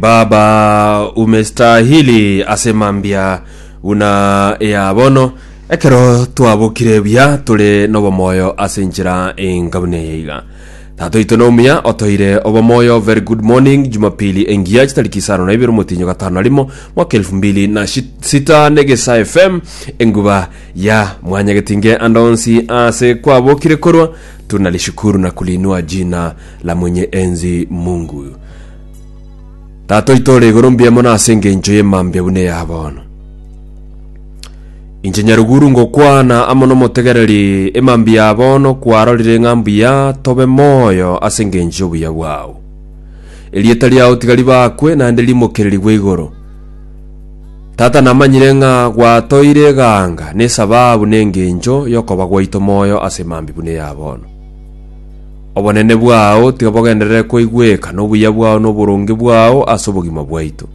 Baba, umestahili ase mambia buna ea bono, ekero twabokire buya tore n'obomoyo ase enchera enga buna eye iga. Tata oito nomuya otoire obomoyo very good morning jumapili engiya chitariki isano na ibere omotinyo gatano na rimo mwaka elfu mbili na shi- sita negesa fm enguba ya mwanyagetinge andonsi ase kwabokire korwa tunalishukuru na kulinua jina la mwenye enzi mungu Tata oito ore igoro mbuya mono ase engencho ye mambia buna eya bono. Inche nyaruguru ngokwana amo nomotegereri emambia ya bono kwarorire ng'a mbuya tobe moyo ase engencho y'obuya bwao. Erieta riao tiga ribakwe naende rimokererigwe igoro. Tata namanyire ng'a gwatoire eganga nesababu nengencho yokoba gwaito moyo ase emambia buna eya bono. Obonene bwao tiga bogenderere koigweka nobuya bwao na oboronge bwao ase obogima bwaito.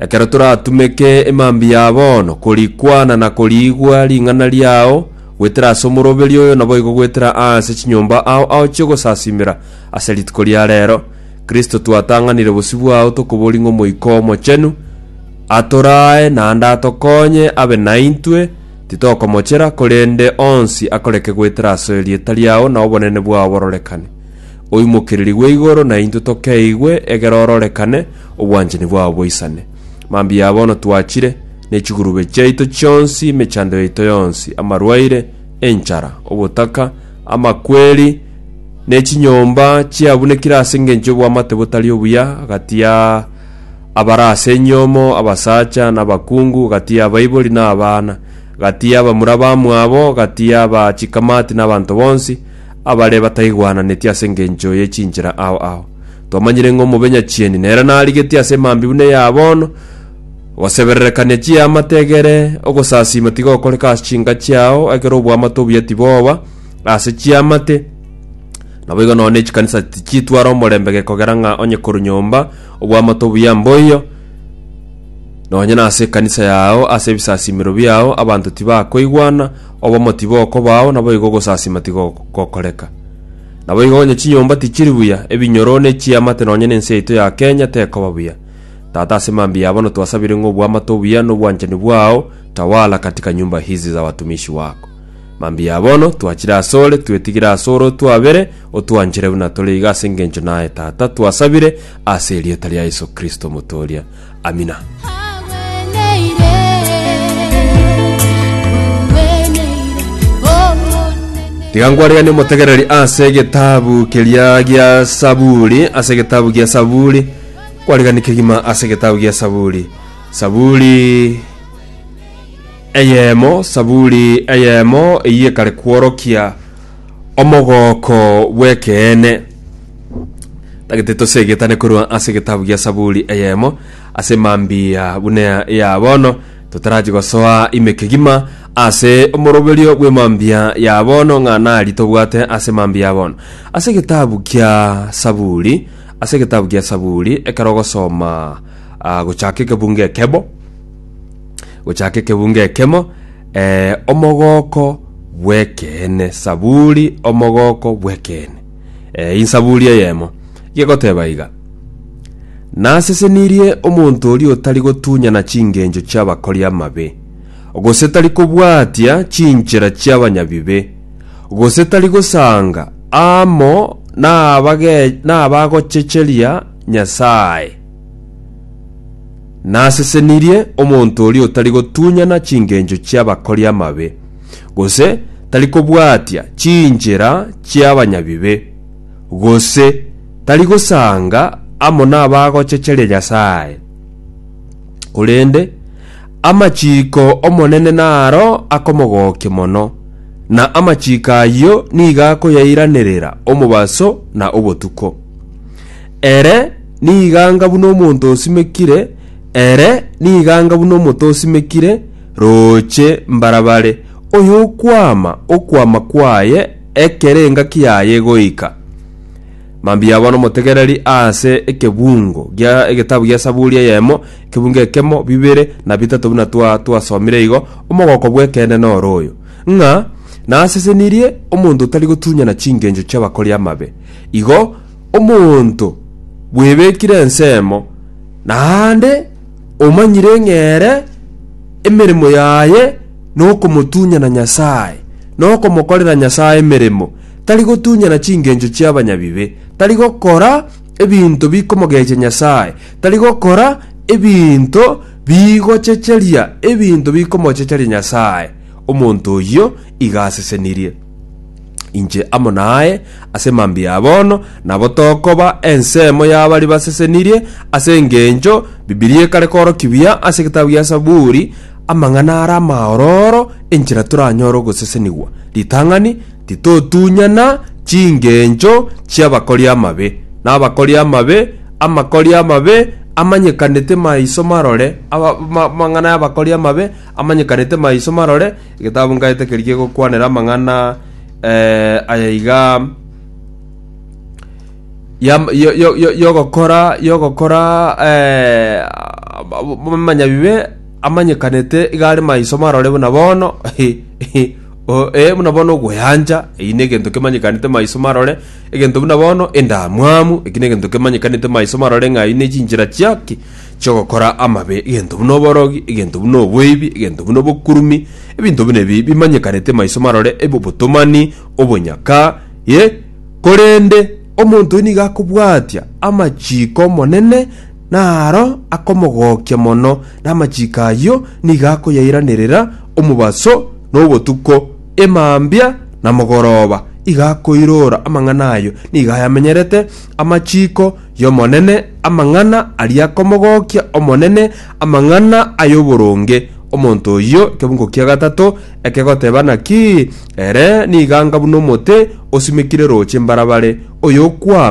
Ekero toratumeke emambi ya bono, korikwana na koriigwa ring'ana riao goetera ase omoroberi oyo naboigo goetera aase chinyomba ao ao chiogosasimera ase rituko ria reero, Kristo twatang'anire bosio bwao tokoboria ng'Omoika Omochenu atoraae naende atokonye abe naintwe, Titokomochera, korende onsi akoreke goetera ase erieta riao na obonene bwao bororekane. Oimokererigwe igoro na intwe tokeigwe egere ororekane, obwanchani bwao boisane. Mambia bono twachire, ne chigurube chiaito chionsi, emechando yaito yonsi, amarwaire, enchara, obotaka, amakweri, ne chinyomba chiabunekire ase engencho y'obwamate botari obuya agati ya abare ase enyomo, abasacha, na abakungu, gati y'abaibori na abana, gati y'abamura bamwabo, gati y'aba chikamati na abanto bonsi, abare bataigwananetie ase engencho ye chinchera ao ao. Twamanyire ng'a omobe nyachieni nere narigetie ase emambia buna eya bono, Ogosebererekania chiamate egere, ogosasiima tigokoreka ase chinka chiao, ekero oboamate obuya tiboba ase chiamate, naboigo nonya ne chikanisa tichitwara omorembe gekogera ng'a onye korwa nyomba, Obw'amato obuya mboiyo, nonye nase ekanisa yao, ase ebisasimero biao abanto tibakoigwana, obomo tibokobao, naboigo ogosasima tigogokoreka. Naboigo onye chinyomba tichiri buya, ebinyoro ne chiamate nonye nense yaito ya Kenya tekoba buya. Tata ase mambia ya bono twasabire ng'a obw'amato obuya nobwanchani bwao tawala katika nyumba hizi za watumishi wako. Mambia bono twachire asore, twetigire asore otwabere, otwanchire buna tore iga ase engencho naye, Tata, twasabire ase erieta ria Yeso Kristo omotooria. Amina. Tiga nkwariganie omotegereri ase egetabu keria gia Saburi, ase egetabu gia Saburi, nkwariganie kegima ase egetabu gia Saburi. Saburi Eyemo, Saburi eyemo eyie kare kworokia omogooko bw'ekeene. Tagete tosegetane korwa ase egetabu gia Saburi eyemo ase mambia buna ya bono, totarachi gosoa ime kegima ase omoroberio bw'emambia ya bono ng'a nari tobwate ase mambia ya bono. Ase egetabu gia Saburi, ase egetabu gia Saburi, ekero ogosoma ah, gochaka ekebungo ekebo, gochaka ekebunga ekemo, eh, omogooko bw'ekeene, Saburi omogooko bw'ekeene, eh, insaburi eyemo, gegoteeba iga, Nasesenirie omonto oria otari gotunyana chingencho chi'abakori amabe, gose tari kobwatia chinchera chi'abanyabibe, gose tari gosanga amo nabage- nabagochecheria Nyasae. Nasesenirie omonto oria otari gotunyana chingencho chi'abakori amabe, gose tari kobwatia chinchera chi'abanyabibe, gose tari gosanga amo nabagochecheria Nyasae. Korende amachiiko 'Omonene naro akomogokia mono, na amachiiko ayio nigo akoyairanerera omobaso na obotuko. Ere niganga buna omonto osimekire, ere niganga buna omote osimekire rooche mbarabare, oyokwama okwama kwaye ekero engaki yaye egoika. Mambia yaba nomotegereri ase ekebungo gia egetabu gia Saburi eyemo, ekebungo ekemo, bibere, na bitato buna twa twasomire igo, Omogoko bw'ekeene noro oyo, ng'a nasesenirie omonto otari gotunyana chingencho chi'abakori amabe, igo omonto bwebekire ensemo, naende omanyire ng'a ere emeremo yaye nokomotunyana Nyasae, na okomokorera Nyasae emeremo, tari gotunyana chingencho chi'abanyabibe, tari gokora ebinto bikomogechia Nyasae, tari gokora ebinto bigochecheria ebinto bikomochecheria Nyasae, omonto oyio iga asesenirie. Inche amo naye ase mambia ya bono, nabo tokoba ensemo y'abari basesenirie, ase engencho Bibilia ekare korokia buya ase egetabu gia Saburi, Amang'ana are amaororo enchera toranyore ogosesenigwa. Ritang'ani, Titotunyana chingencho chi'abakori amabe, na abakori amabe, amakori amabe amanyekanete maiso marore, aba- ma- amang'ana y'abakori amabe amanyekanete maiso marore, Egetabu nkaete keria kegokwanera amang'ana aya iga, ya- yo- yo- yo- y'ogokora y'ogokora omonyabibe amanyekanete iga are maiso marore buna bono o- eh, buna bono ogoyancha, eyio na egento kemanyekanete maiso marore, egento buna bono endamwamu, eki na egento kemanyekanete maiso marore ng'a eyio na echinchera chia ki? chi'ogokora amabe, egento buna oborogi, egento buna oboibi, egento buna obokurumi, ebinto buna ebi bimanyekanete maiso marore, ebe obotomani, obonyaka, ye, korende omonto oyo nigo akobwatia amachiiko 'Omonene, naro akomogokia mono, na amachiiko ayio nigo akoyairanerera omobaso na obotuko, emambia na mogoroba, igo akoirora amang'ana ayo, nigo ayamenyerete amachiiko, y'Omonene, amang'ana aria komogokia Omonene, amang'ana ay'oboronge, omonto oyio ekebungo kia gatato ekegoteba naki, ere niganga buna omote osimekire roche mbarabare, oyokwama.